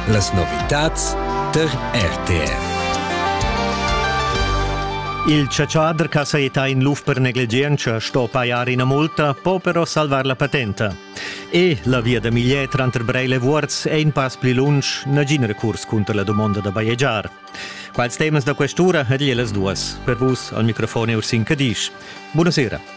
Las novitads tar RTR. Il chatschader che saetta in luf per negligientscha sto pajar ina multa, po però salvar la patenta. E la via da Migliet tranter Breil e Vuorz è in pass pli lunsch, nagin recurs cunter la dumonda da bajegiar. Quals temas da questura ed las duas. Per vus al microfon è Ursin Cadisch. Buonasera.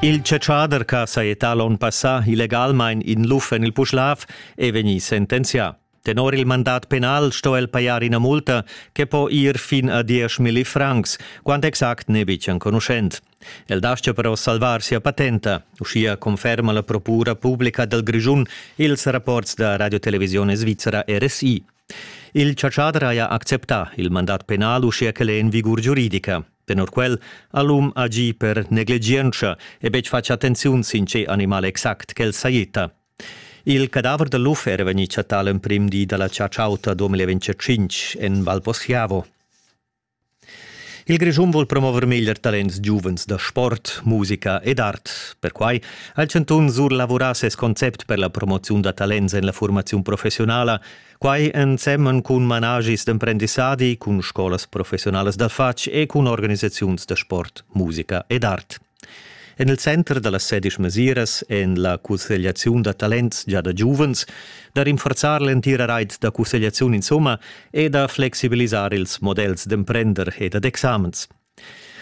Il chatschader ch'ha sajettà l'onn passà illegalmain in luf en il Puschlav è vegnì sentenzià. Tenor il mandat penal sto el pajar ina multa che po ir fin a 10.000 francs, quant exact n'è betg enconuschent. El dastga però salvar sia patenta, uschia conferma la procura publica dal Grischun ils rapports da radiotelevisione svizra RSI. Il chatschader haja acceptà il mandat penal uschia ch'el è en vigur giuridica. Tenor quel ha l'um agì per negligientscha e betg fatg attenziun sin tge animal exact ch'el sajitta. Il cadaver da luf era vegnì chattà l'emprim di da la chatsch'auta 2025 en Val Poschiavo. Il Grischun vul promover meglier talents giuvens da sport, musica ed art. Perquai ha il chantun surlavurà ses concept per la promoziun da talents en la furmaziun professionala, quai ensemen cun managis d'emprendissadi, cun scolas professionalas da fatg e cun organisaziuns da sport, musica ed art. En il center da las sedisch mesiras en la cussegliaziun da talents gia da giuvens, da rinforzar l'entira rait da cussegliaziun insomma e da flexibilisar ils models d'emprender e dad examens.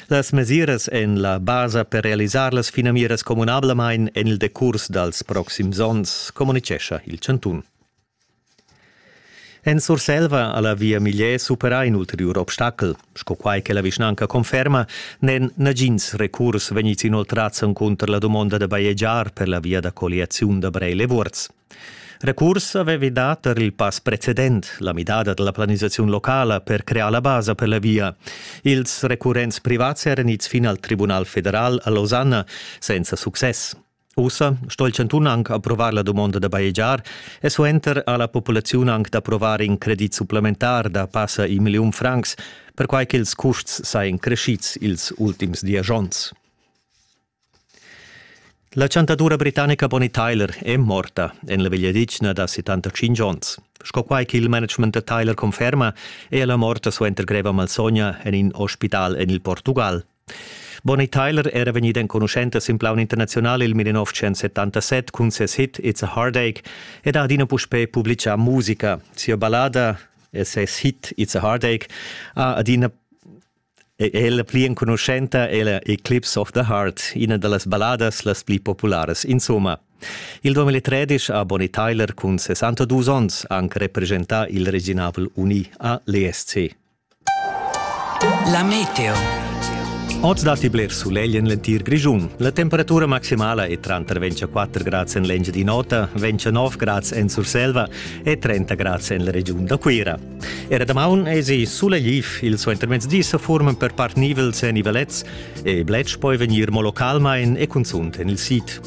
Las mesiras en la basa per realisar las finamiras communablamain en il decurs dals proxims onns, communitgescha il chantun. En Surselva ha la Via Miglier superà in ulteriur obstacel. Sco quai che la vischnanca conferma, n'èn nagins recurs vegnids inoltrads encunter la dumonda da bajegiar per la via da colliaziun da Breil e Vuorz. Recurs avevi dà tar il pass precedent, la midada da la planisaziun locala per crear la basa per la via. Ils recurrents privats eran ids fin al Tribunal federal a Losanna senza success. Ussa sto il chantun anc approvar la dumonda da bajegiar e suenter ha la populaziun anc d'approvar in credit supplementar da passa in milliun francs, perquai ch'ils custs sajan crescids ils ultims diesch onns. La chantadura britannica Bonnie Tyler è morta en la vegliadetgna da 75 onns. Sco quai ch'il management da Tyler conferma, è ella morta suenter greva malsogna en in ospital en il Portugal. Bonnie Tyler era vegnida enconuschenta sin plaun internaziunal il 1977 cun ses hit It's a Heartache ed ha adina puspè publitgà musica. Sia ballada e ses hit It's a Heartache ha adina è la pli enconuschenta è la Eclipse of the Heart, ina da las balladas las pli popularas. Insomma, il 2013 ha Bonnie Tyler cun 62 onns anche representà il Reginavel Uni a l'ESC. La meteo. Oz datti bler sulegl en l'entir Grischun. La temperatura maximala è tranter 24 grads en l'Engiadin'Ota, 29 grads en Surselva e 30 grads en la regiun da Cuira. Era damaun èsi sulegliv, il suentermezdi sa forman per part nivels e nivelets e bletsch poi vegnir mo localmain e cunzunt en il sid.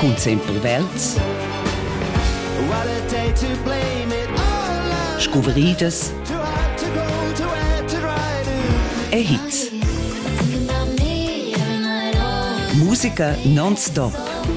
Cun sempel vels. Scuvridas e hits. Musica non stop.